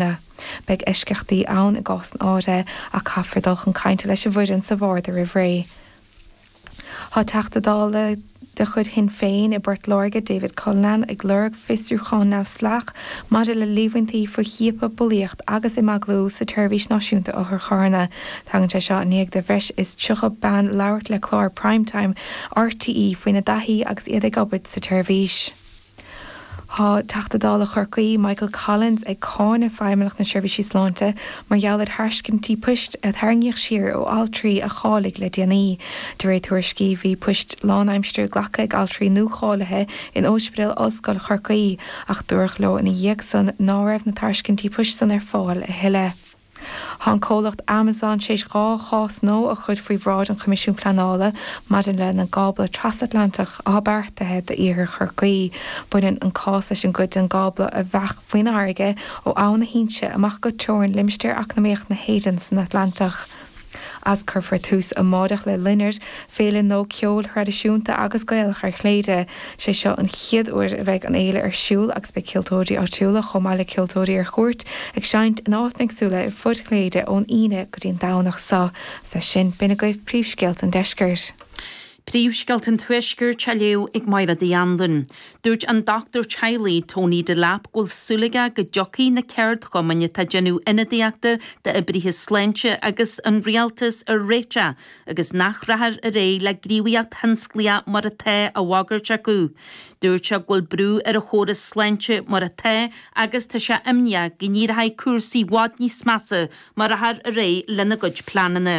Sea, beidh eisceachtaí ann i gcásanna áirithe ach caithfear dul chun cainte leis an bhfoireann sa bharda roimh ré. Tá Teachta Dála de chuid Shinn Féin i bPort Láirge, David Cullinane, ag lorg fiosrúchán neamhspleách maidir le líomhaintí faoi chiapadh, bulaíocht agus imeaglú sa tSeirbhís Náisiúnta Otharcharranna. Tagann sé seo i ndiaidh do bhreis is 30 bean labhairt le clár Prime Time RTÉ faoina dtaithí agus iad ag obair sa tseirbhís. Tá Teachta Dála Chorcaí, Michael Collins ag cáineadh Feidhmeannacht na Seirbhísí Sláinte mar gheall ar thairiscintí poist a tarraingíodh siar ó altraí a cháiligh le déanaí. De réir tuairiscí, bhí poist lánaimsire glactha ag altraí nuacháilithe in Ospidéal Ollscoil Chorcaí ach dúradh leo ina dhiaidh san ná raibh na tairiscintí poist san ar fáil a thuilleadh. Tá an comhlacht Amazon tar éis dhá chás nua a chur faoi bhráid an Choimisiúin Pleanála maidir lena gcábla trasatlantach atá beartaithe d'iarthar Chorcaí. Baineann an cás leis an gcuid den gcábla a bheadh faoin fharraige ó Abhainn na hInse amach go teorainn Limistéar Eacnamaíoch na hÉireann san Atlantach. as. Cuirfear tús amáireach le Loinnir, féile nua ceoil thraidisiúnta agus Gaelach ar Chléire. Sé seo an chéad uair a bheidh an fhéile ar siúl agus beidh ceoltóirí áitiúla chomh maith le ceoltóirí ar chuairt ag seinnt in áiteanna éagsúla ar fud Chléire ón Aoine go dtí an Domhnach so. Is leis sin, b'in agaibh príomhscéalta an deiscirt. Príomhscéalta an Tuaiscirt á léamh ag Máire Ní Anluain. Dúirt an dochtúir teaghlaigh Tony Delap go bhfuil súil aige go dtiocfaidh na ceardchumainn atá ag déanamh ionadaíochta d'oibrithe sláinte agus an Rialtas ar réiteach agus nach rachfar ar aghaidh le gníomhaíocht thionsclaíoch mar atá á bhagairt acu. Dúirt sé go bhfuil brú ar an chóras sláinte mar atá agus tá sé imníoch go n-éireoidh cúrsaí i bhfad níos measa má rachfar ar aghaidh lena gcuid pleananna.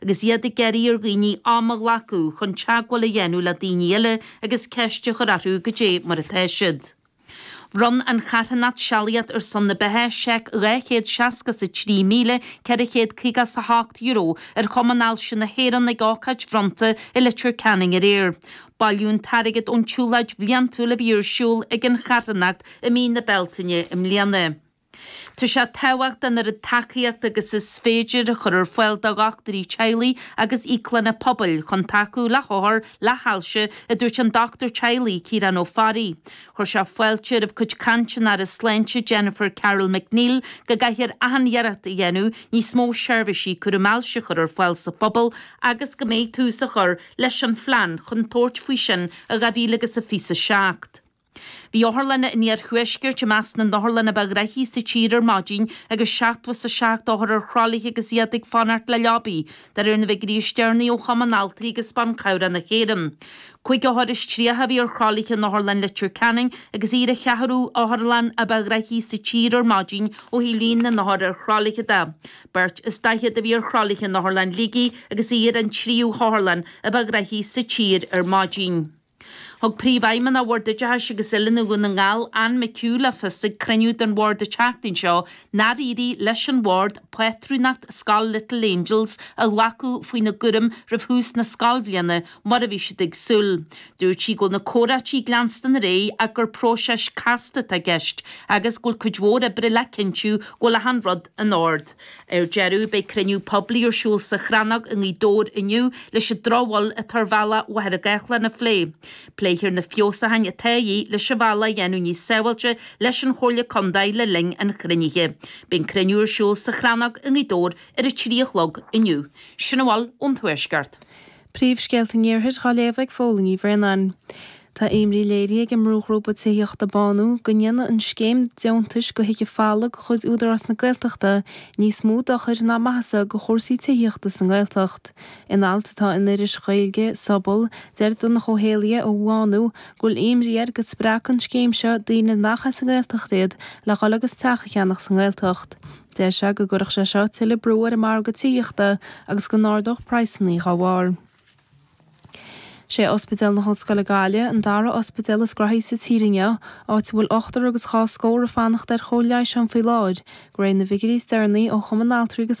agus iad ag iarraidh ar dhaoine am a ghlacadh chun teagmháil a dhéanamh le daoine eile agus ceist a chur orthu goidé mar atá siad. Bhronn an charthanacht Sealaíocht ar son na Beatha seic dhá chéad seasca is a trí míle ceithre chéad caoga is a hocht euro ar Chumann Ailse na hÉireann ag ócáid bhronnta i Leitir Ceanainn aréir. Bailíodh an t-airgead ón tsiúlóid bhliantúil a bhí ar siúl ag an charthanacht i mí na Bealtaine i mbliana. Tá sé tábhachtach an oiread tacaíocht agus is féidir a chur ar fáil do dhochtúirí teaghlaigh agus íoclanna pobail chun tacú le hothair le hailse, a dúirt an dochtúir teaghlaigh, Ciarán Ó Fearraigh. Chuir sé fáilte roimh cuid cainte an Aire Sláinte Jennifer Carroll MacNeill go gcaithfear achan iarracht a dhéanamh níos mó seirbhísí cúram ailse a chur ar fáil sa phobal agus go mbeidh tús á chur leis an phlean chun tabhairt faoi sin i 2027. Bhí otharlanna an iarthuaiscirt i measc na n-otharlann ba ghnoithí sa tír ar maidin agus seachtó is a seacht othar ar thralaithe agus iad ag fanacht le leaba, de réir na bhfigiúirí is deireanaí ó Chumann Altraí agus Ban Cabhrach na hÉireann. Cúig othar is tríocha a bhí ar thralaithe in Otharlann Leitir Ceanainn agus í ar an cheathrú otharlann ba ghnoithí sa tír ar maidin ó thaobh líon na n-othar ar thralaithe de. Beirt is daichead a bhí ar thralaithe in Otharlann Shligigh agus í ar an tríú hotharlann ba ghnoithí sa tír ar maidin. Thug Príomhfheidhmeannach Bhord Oideachais agus Oiliúna Dhún na nGall, Anne McHugh, le fios ag cruinniú den Bhord an tseachtain seo nár éirigh leis an Bhord pátrúnacht scoil Little Angels a ghlacadh faoina gcúram roimh thús na scoilbhliana mar a bhí siad ag súil. Dúirt sí go bhfuil na comhráití ag leanstan ar aghaidh ach gur próiseas casta atá i gceist agus go bhfuil cuid mhór oibre le cinntiú go bhfuil achan rud in ord. Ar deireadh, beidh cruinniú poiblí ar siúl sa Chrannóg i nGaoth Dobhair inniu leis an drochbhail atá ar bhealach Mhachaire Gathlán a phlé. Pléifear na feabhsúcháin atá de dhíth leis an bhealach a dhéanamh níos sábháilte leis an Chomhairle Contae le linn an chruinnithe. Beidh an cruinniú ar siúl sa Chrannóg i nGaoth Dobhair ar a trí a chlog inniu. Sin a bhfuil ón Tuaisceart. Príomhscéalta an Iarthair á léamh ag Fódhla Ní Bhraonáin. Tá imní léirithe ag an mbrúghrúpa tithíochta Bánú go ndéanfadh an scéim deontais Go hUige Falla de chuid Údarás na Gaeltachta níos mó dochair ná maitheasa do chúrsaí tithíochta sa nGaeltacht. In alt atá in iris Ghaeilge Sobal, deir Donncha Ó hÉallaithe ó Bhánú go bhfuil imní air go spreagfadh an scéim seo daoine nach as an nGaeltacht iad le dhul agus teach a cheannach sa nGaeltacht. Deir sé go gcuirfeadh sé seo tuilleadh brú ar an margadh tithíochta agus go n-ardódh praghsanna dá bharr. Is é Ospidéal na hOllscoile Gaillimh an dara ospidéal is gnoithí sa tír inniu, áit a bhfuil ochtar agus dhá scór ag fanacht ar chóir leighis ann faoi láthair, de réir na bhfigiúirí is deireanaí ó Chumann Altraí agus.